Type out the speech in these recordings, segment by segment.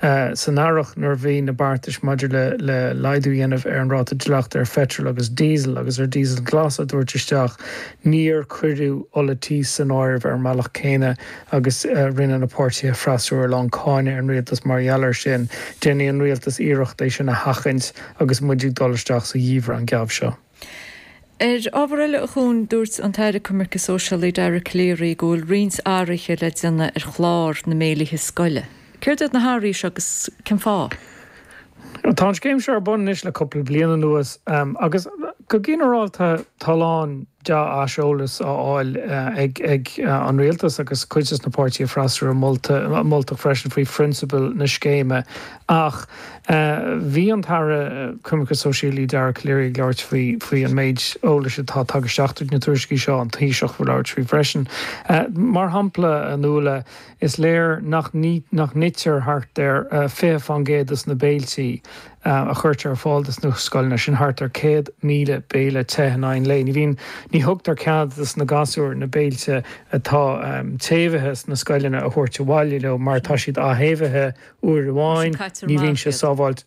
san earrach nuair a bhí na beartais maidir le le laghdú a dhéanamh ar an ráta dleachta ar pheitreal agus díosal agus ar dhíosal glas á dtabhairt isteach, níor cuireadh ola tí san áireamh ar an mbealach céanna agus rinne na páirtithe freasúra a lán cáineadh ar an rialtas mar gheall air sin. Déanfaidh an rialtas iarracht é sin a sheachaint agus muid ag dul isteach sa gheimhreadh an geábh seo. Ar ábhar eile a Chuain, dúirt an tAire Coimirce Sóisialaí Dara Calleary go bhfuil roinnt athraithe le déanamh ar chlár na mbéilithe scoile. Céard iad na hathraithe seo agus cen fáth? Tá an scéim seo ar bun anois le cúpla bliain anuas agus go ginearálta tá a lán deá-aiseolas á fháil ag an Rialtas agus cuid de na páirtithe freasúra molta moltach freisin faoi phrionsabail na scéime. Ach bhí an tAire Coimirce Sóisialaí Dara Calleary ag labhairt faoi an méid eolais atá tagtha isteach tríd na tuairiscí seo, an Taoiseach ag labhairt faoi freisin. Mar shampla, a Nuala, is léir nach n-itear thart ar 20% de na béilte a chuirtear ar fáil do na scoileanna, sin thart ar 100,000 béile te in aghaidh an lae. Ní bhíonn, ní thugtar cead do na gasúir na béilte atá téamhaithe sna scoileanna a thabhairt abhaile leo mar tá siad atéamhaithe uair amháin, ní bhíonn sé sábháilte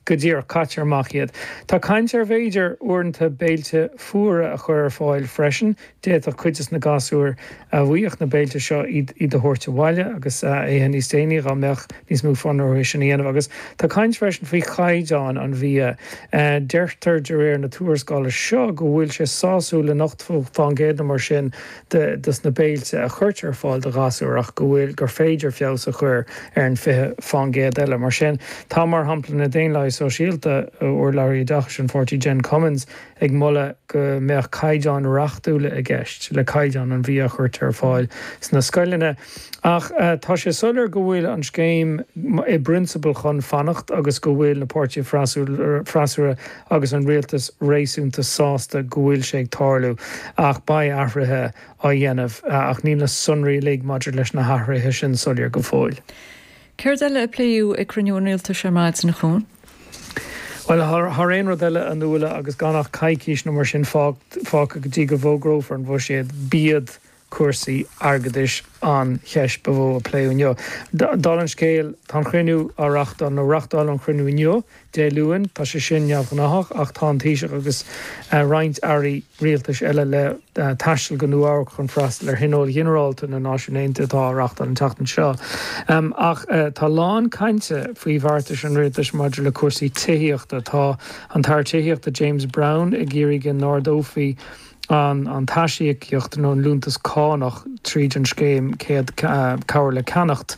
go dtí go, caitear amach iad. Tá caint ar bhféidir uaireanta béilte fuara a chur ar fáil freisin. D'fhéadfadh cuid des na gasúir a bhfuigheadh na béilte seo iad a thabhairt abhaile agus a ithe níos déanaí dhá mbeadh níos mó fonn orthu é sin a dhéanamh. Agus tá caint freisin faoi chaighdeán an bhia. Deirtear de réir na tuarascála seo go bhfuil sé sásúil le hochtó faoin gcéad nó mar sin. de dos na béilte a chuirtear ar fáil do ghasúir ach go bhfuil gur féidir feabhas a chur ar an 20% eile. Mar sin tá, mar shampla, na Daonlathaigh Sóisialta, urlabhraí Oideachais an pháirtí Jen Cummins ag moladh go mbeadh caighdeáin reachtúla i gceist le caighdeán an bhia a chuirtear ar fáil sna scoileanna. Ach tá sé soiléir go bhfuil an scéim i bprionsabal chun fanacht agus go bhfuil na páirtithe freasúra, agus an rialtas réasúnta sásta go bhfuil sé ag tarlú, ach beidh athruithe á dhéanamh, ach níl na sonraí uilig maidir leis na hathruithe sin soiléir go fóill. Céard eile a pléadh ag cruinniú an rialtais ar maidin, a Chuain? Bhuel, thar aon rud eile, a Nuala, agus gan ach coicís nó mar sin fágtha go dtí go bhfógrófar an bhuiséad, b'iad cúrsaí airgeadais an cheist ba mhó a pléadh inniu. Dála an scéil, tá an cruinniú á reáchtáil, nó reáchtáladh an cruinniú inniu, Dé Luain, tá sé sin neamhghnáthach, ach tá an Taoiseach agus roinnt airí rialtais eile le taisteal go Nua Eabharc chun freastal ar Thionól Ginearálta na Náisiún Aontaithe atá á reáchtáil an tseachtain seo. Ach tá a lán cainte faoi bheartais an rialtais maidir le cúrsaí tithíochta. Tá an tAire Tithíochta James Browne ag iarraidh go n-ardófaí. an t-aisíocaíocht nó an liúntas cánach tríd an scéim Cabhair le Ceannacht.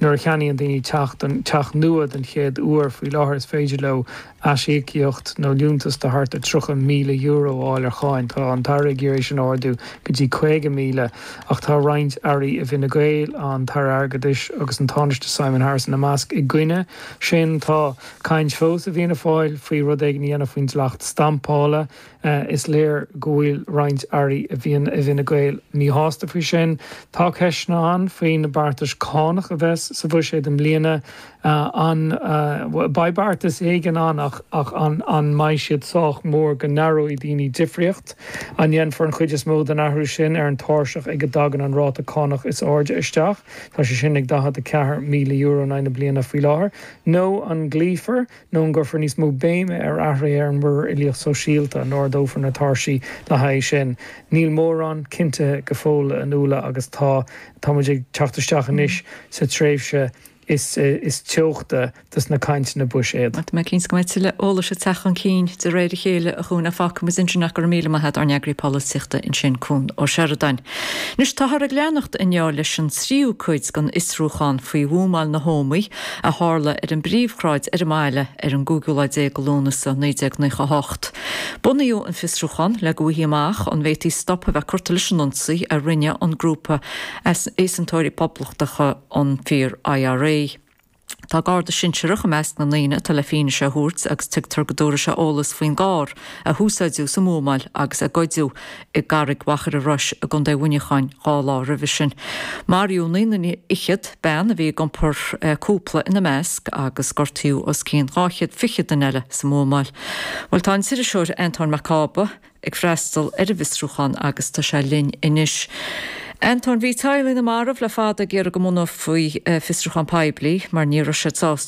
Nuair a cheannaíonn daoine teach teach nua don chéad uair faoi láthair is féidir leo aisíocaíocht nó liúntas de thart ar €30,000 a fháil ar cháin. Tá an tAire ag iarraidh sin a ardú go dtí 50,000 ach tá roinnt Airí i bhFine Gael, an tAire Airgeadais agus an Tánaiste Simon Harris ina measc, i gcoinne sin. Tá caint fós i bhFianna Fáil faoi rud éigin a dhéanamh faoin dleacht stampála. Is léir go bhfuil roinnt Airí i bhFine Gael míshásta faoi sin. Tá ceisteanna ann faoi na beartais cánach a bheas sa bhuiséad i mbliana. An mbeidh beartas éigin ann ach an mbeidh siad sách mór go n-aireoidh daoine difríocht? An ndéanfar an chuid is mó den athrú sin ar an tairseach ag a dtagann an ráta cánach is airde isteach, tá sé sin ag €44,000 in aghaidh na bliana faoi láthair, nó an gcloífear Nó an gcuirfear níos mó béime ar athruithe ar an Muirear Uilíoch Sóisialta? An ardófar na tairsí le haghaidh sin? Níl mórán cinntithe go fóill a Nuala agus tá tá muid ag teacht isteach anois sa tréimhse is is teochta de na cainteanna buiséid. Tá mé cinnte go mbeidh tuilleadh eolais ag teacht chun cinn de réir a chéile a Chuain. Fágfaidh muid ansin é go raibh míle maith agat ár n-eagarthóir polaitíochta ansin Cuan Ó Seireadáin. Anois táthar ag leanacht inniu leis an tríú cuid den fhiosrúchán faoi bhuamáil na hÓmaí. a tharla ar an bpríomhshráid ar an mbaile ar an gcúigiú lá déag de Lúnasa, 1998. Bunaíodh an fiosrúchán le go bhfaighfí amach an bhféadfaí stop a bheith curtha leis an ionsaí a rinne an grúpa easaontóirí poblachtacha an Fíor-IRA. Tá Garda sinsearach i measc na ndaoine atá le fianaise a thabhairt agus tuigtear go dtabharfaidh sé eolas faoin gcarr a húsáideadh sa mbuamáil agus a goideadh i gCarraig Mhachaire Rois i gContae Mhuineacháin dhá lá roimhe sin. Maraíodh naoi nduine fhichead, bean a bhí ag iompar cúpla ina measc, agus gortaíodh os cionn dhá chéad fiche duine eile sa mbuamáil. Bhuel, tá an t-iriseoir Antóin Mac Cába ag freastal ar an bhfiosrúchán agus tá sé linn anois. Antóin, bhí teaghlaigh na marbh le fada ag iarraidh go mbunófaí fiosrúchán poiblí mar ní raibh siad sásta